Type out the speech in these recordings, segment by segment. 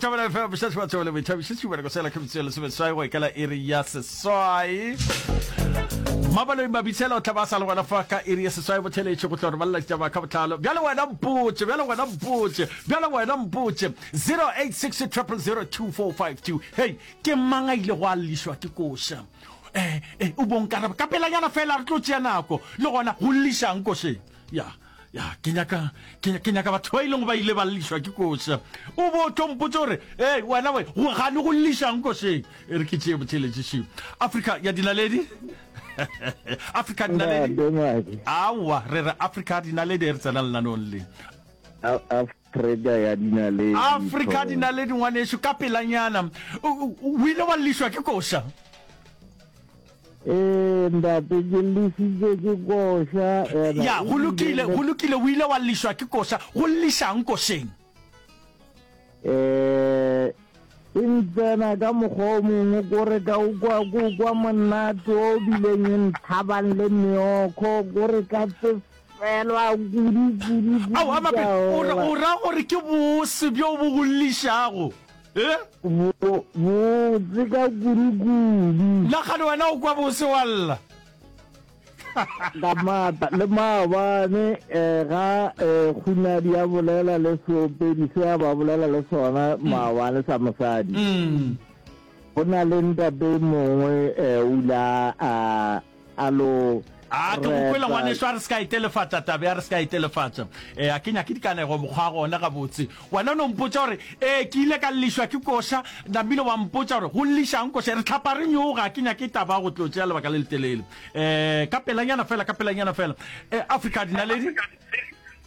Tabela FM bušetši ba tsebele boithabišitši bereko sela ke bitseo lesomeswai go ikela iri ya seswai mabaloi mabitsela o tla ba sa le gona fa ka iri ya seswai botheletše go tlo re balela ditaba ka botlalo bjale wena mpotše bjale wena mpotše bjale wena mpotše 086 0002452 hei ke mang a ile go a llišwa ke koša um eh, eh, o bonkaraba ka pelanyana fela re tlo tšea nako le gona go llišang košeng ya yeah. ya ke nyaka ke nyaka batho ba ileng ba ile ba llišwa ke kose o bo tlo mpotse gore ee wena we go gane go llišang koseng e re ke tseye botheletšešeng africa ya dinaledi africa dinaledi aowa re re africa dinaledi e re tsena lenanong le Trega ya dinaledi thobela. Afrika dinaledi ngwanešu ka pelanyana o o ile wa llišwa ke koša. Ee ndate ke llisitšwe ke koša ena. Ya go lokile go lokile o ile wa llišwa ke koša go llišang košeng. Ee e ntsena ka mokgwa o mongwe kore ka o kwa ko kwa monate o bileng e nthabang le meokgo kore ka tse Tlogelwa kudu, kudu, kudu, Ao, a mape, o ra, Jehova. o ra gore ke bose bjo bo go llišago, e? Bo, botse ka kudu, kudu. Nagane wena o kwa bose wa lla. Ka maatla le maabane, eh, ga, eh, kgunadi a bolela le seopedi se a ba bolela le sona maabane sa mosadi. Mm. Go na le ntate mongwe, eh, o ile a, a, a lo a ke go kwele ngwaneso a re se ka e telefatša tabe a re se ka e telefatša ee a ke nyake dikanego mokgwa wa gona gabotse wena o ne o mpotsa gore ee ke ile ka llišwa ke koša namile wa mpotsa gore go llišang koša re tlhapa re nyoga a ke nyake taba go tlo tšea lebaka le letelele um ka pelanyana fela ka pelanyana fela um africa dinaledi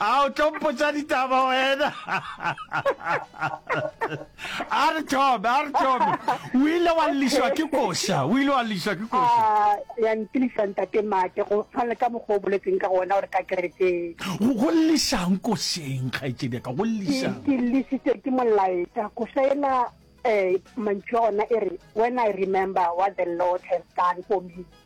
a o tlo mpotsa ditaba wena a re thome a re thome o ile wa lliswa ke koša o ile wa lliswa ke koša Ah, ya ntilisa ntate mate go tshwana le ka mokgwa o boletseng ka gona gore ka kerekeng go go llisang košeng kgaetšedi ka go llisang ke llisitswe ke molaetša go saena um mantšu a ona e re when i remember what the lord has done for me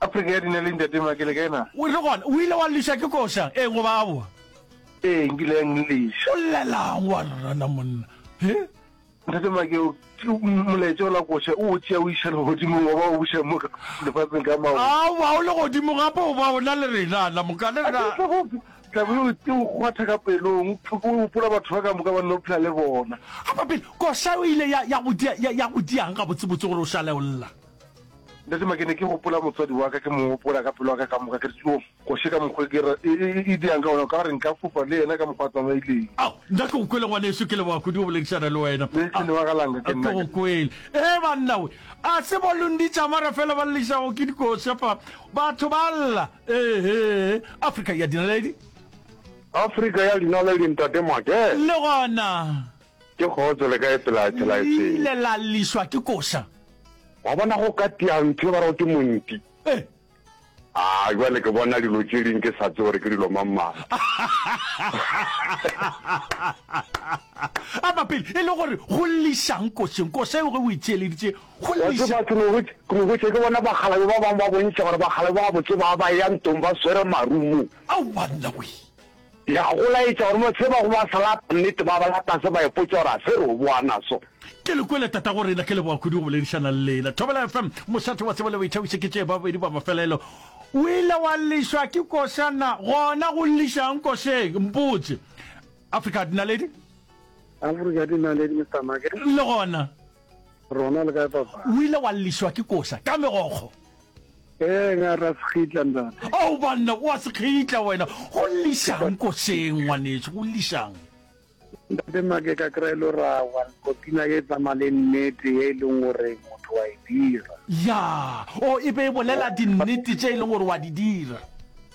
Afrika ya dina le Ntate Maka, le kae na? O re gona, o ile wa lliswa ke koša, ee goba aowa? Ee, nkile ya nlliswa. O llelang wa rrana monna, he? Ntate Maka, o molaetša o la koša, o o tšea o iša legodimong goba o buša mo lefatsheng ka maoto? Aowa, o legodimo gape goba o na le rena, la moka le rena. A ke o hlagope? Tla be o o kgwatha ka pelong, o gopola batho ba ka moka ba nno phela le bona. Apa pele, koša e ile ya, ya go di, ya, ya go dia'ng gabotsebotse gore o šale o lla? Ntatemake ne ke gopola motswadi wa ka, ke mo gopola ka pelo ya ka ka moka, ke re tšoo, koše ka mokgwa ke re e, e, e diang ka gona, o ka re nka fofa le yena ka mokgwa a tsamaileng. Ao, nka ke go kwele ngwaneso, ke leboga kudu go boledišana le wena. Le ke leboga ga langa, ke nna. Ke go kwele. Ee, banna we, a se bolong di tšamara fela ba llešago ke dikoša fa, batho ba lla. Ee, Afrika ya dinaledi. Afrika ya dinaledi, Ntatemake. Le gona. Ke kgotso, le kae pela Le tshelaetseng? ile la llišwa ke koša. Wa bona go ka tia ntho e ba rego ke monti. Eh. A jwale ke bona dilo tše ding ke sa tse gore ke dilo mang mang. A mapele e le gore go llišang košeng? Koša eo ge o e theeleditše go Wa lliša. tseba ke no hwetša ke no hwetša ke bona bakgalabe ba bangwe ba bontšha gore bakgalabe ba botse ba ba ya ntong ba swere marumo. Aowa nna wee. Ya go laetša gore mo se bago ba se lata nnete ba bolata se ba ipotša gore a se re o boa naso. Ke le kwele tatago rena ke leboga kudu go boledišana le lena Thobela FM mošate wa tsebo le boithabišo ke tšee ba babedi ba mafelelo o ile wa llišwa ke koša na gona go llišang košeng mpotše Afrika Dinaledi Afrika Dinaledi Mr Make le gona Rona le kae papa? O ile wa llišwa ke koša ka megokgo? Ee, nga ra sekgitla ntate. Ao banna, o a sekgitla wena. Go llišang košeng ngwanešu, go llišang? Ntate mma ke ka kry lo ra wa nkopina ye tsamaya le nnete ye e leng gore motho wa e dira. Ya, o e be e bolela dinnete tše e leng gore wa di dira.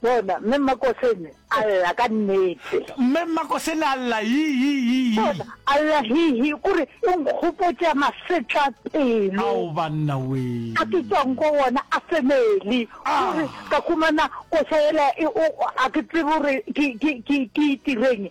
Bona, Mme Mmakosene a lla ka nnete. Mme Mmakosene a lla, Hi-hi-hi-hi. Bona, a lla, Hi-hi, o re, e nkgopotša masetlapelo. Ao, banna wee! A ke tšwang go wona a family. O re, ka humana koša yela e, o, a ke tsebe gore ke, ke, ke, ke itireng,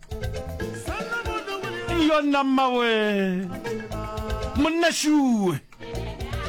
yona mmawe monna shuwe